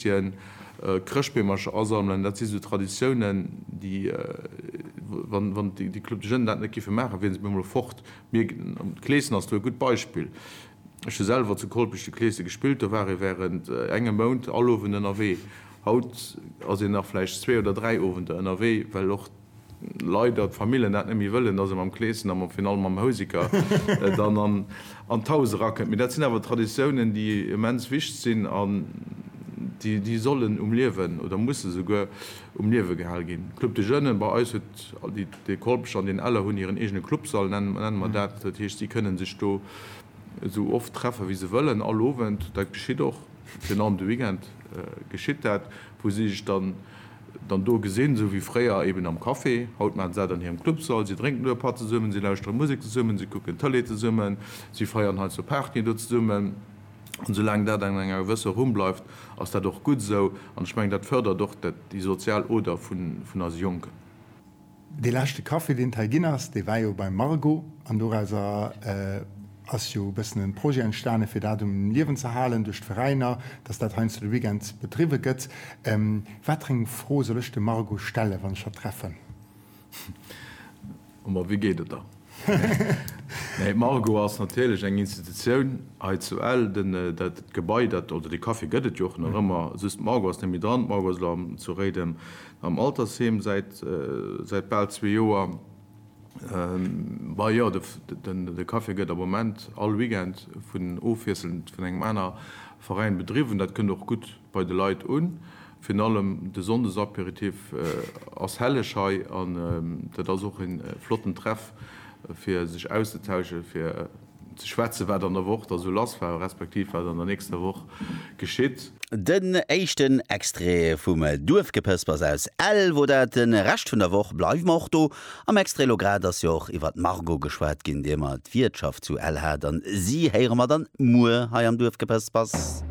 D'Traditioun Chrëschtbeemercher asammelen, dat si sou Traditiounen, déi, wann déi Club de Jeunes dat net géife maachen, wiere se op eemol fort. Mir, d'Clesen ass do e gutt Beispill. Ech hu selwer zu Kolpech de Clese gespillt, do war ee wärend engem Mount all Owend ënnerwee. Haut ass een nach vläicht zwee oder dräi Owender ënnerwee, well och. Leider d'Famillen dat net méi wëllen, dass ee mam Kleeschen a fir allem mam Houseker dann an d'Haus erakënnt. Mee dat sinn awer Traditiounen, déi immens wicht sinn an déi sollen um Liewen oder musse souguer um Liewe gehal ginn. Club de Jeunes, bei eis huet de Kolpech an den Eller hunn hiren eegene Clubsall, nenne mer dat. Dat heescht, si kënne sech do esou oft treffe wéi se wëllen, all Owend. Dat geschitt och, virun allem de Weekend geschitt dat, wou si sech dann, dann do gesinn, esou wéi fréier eben am Café. Haut maachen se dat an hirem Clubsall, si drénken do e Patt zesummen, si lauschteren Musek zesummen, si kucken Tëlee zesummen, si feieren heiansdo Partyen do zesummen. An soulaang dat an enger gewësser Rumm bleift, ass dat och gutt esou. An ech mengen, dat fërdert och déi sozial Oder vun eise Jonken. Dee leschte Café deen et hei ginn ass, dee war jo beim Margo an dorauser ass jo e bëssen e Projet entstane fir dat um Liewen ze halen duerch d'Veräiner, dass dat heiansdo de Weekend bedriwwe gëtt. Wat fir eng Fro soll ech dem Margo stellen, wann ech hatt treffen? Hu mer, wéi geet et der? Nee, Margo ass natierlech eng Institutioun hei zu Ell. Den, dat Gebai, dat, oder de Café gëtt et jo och nach ëmmer, just d'Margo ass net méi dran. D'Margo ass elo zu Réiden am Altersheem säit, säit bal zwee Joer. Bah jo, de, den, de Café gëtt am Moment all Weekend vun, ofwiesselnd vun engem aner Veräin bedriwwen. Dat kënnt och gutt. bei de Leit un. Virun allem de Sonndesaperitif ass helleg hei an dat ass och een flotten Treff fir sech auszetauschen, fir ze schwätzen wat an der Woch da sou lass war, respektiv wat an der nächster Woch geschitt. Den éischten Extrait vum Duerfgepëspers aus Ell wor dat. Den Rescht vun der Woch bleiwen mer och do. Am Extrait elo grad ass jo och iwwert d'Margot geschwat ginn, déi emmer d'Wiertschaft zu Ell hat an si héieren mer dann muer hei am Duerfgepëspers.